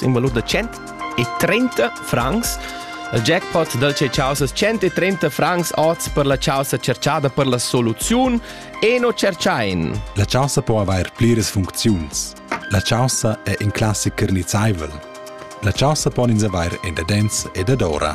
in valut da 130 francs. Il jackpot dal c'è causa 130 francs oz per la causa cerchada per la soluziun e no cerchain. La causa può avair pliras funcziuns. La causa è in classic carnizzaivel. La causa pon ins avair in dadenz e dadora.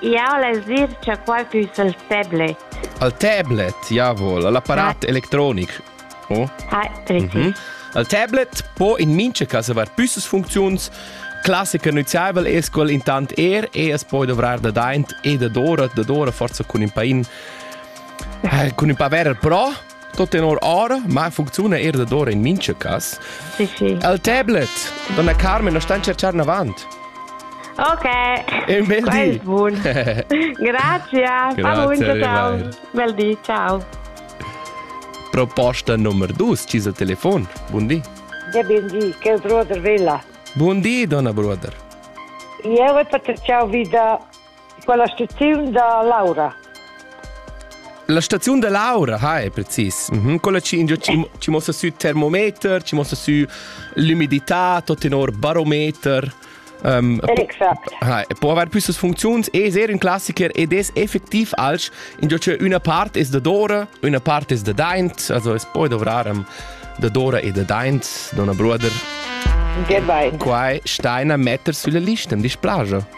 Jau less dir cha quai füss il tablet. Il tablet, jawol, il apparat electronic. Oh? Ah, richtig. Mhm. Il tablet po in mincha cas avair püssas funcziuns. Classica nüziaivel es quel intant er e es poi dovrar da daint e da dora, da dora forza cun ün pain eh, cun ün pa ver pro Tot tenor ora, ma funcziuna er da dor in mincha cas. Sì, sì. El tablet, donna Carmen, la stan cerchar avant. Ok. E un bel di. Buon. Grazie. Grazie, ciao. Bel di, ciao. Proposta numero 2, ci il telefono. Buon di. Ja bin di, che brother villa. Buon di, donna brother. Io voglio ciao vida Quella staziun da Laura. La staziun da Laura, hai, precis. Mm -hmm. Quella ci, ci, ci mostra su termometer, ci mostra su l'umidità, tot tenor barometer. Um, Exact. Ha, può avere più funzioni e è un classiker ed è effettiv als in già una parte è da Dora, una parte è da Daint, also es poi dovraram da Dora e da Daint, Donna Bruder. Gebein. Quai steina metter sulla lista, im Displagia.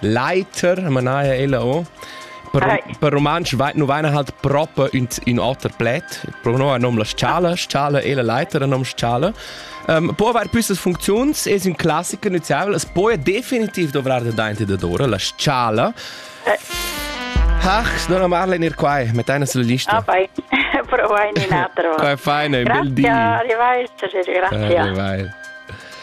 Leiter, manaja ella o. Per, right. per rumantsch vai, nu vaina halt proper ün, ün oter pled. Pro no nom la schala, schala e la leiter nom schala. Um, può aver püssas funziuns, es un classico nüziabel, es poi definitiv dovrar da dainti da dora, la schala. Eh. Ach, non amarle in ir quai, mit einer sulla lista. Ah, vai. Provo in un altro. Vai, feine, un bel dì. Grazie, arrivederci, grazie. Arrivederci.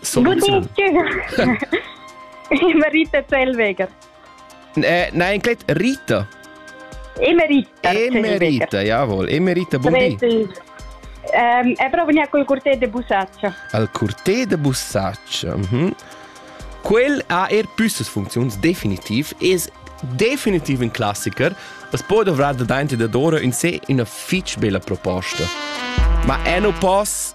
Soluziun. Marita Zellweger. Nein, inclet Rita. Emerita. Emerita, jawohl. Emerita, buon di. Um, è proprio venire col corteo de bussaccia. Al corteo de bussaccia. Mm-hmm. Quel ha er püssas funzions definitiv, es definitiv in classiker, es può dovrà da dainti da dora in se una fitch bella proposta. Ma è no poss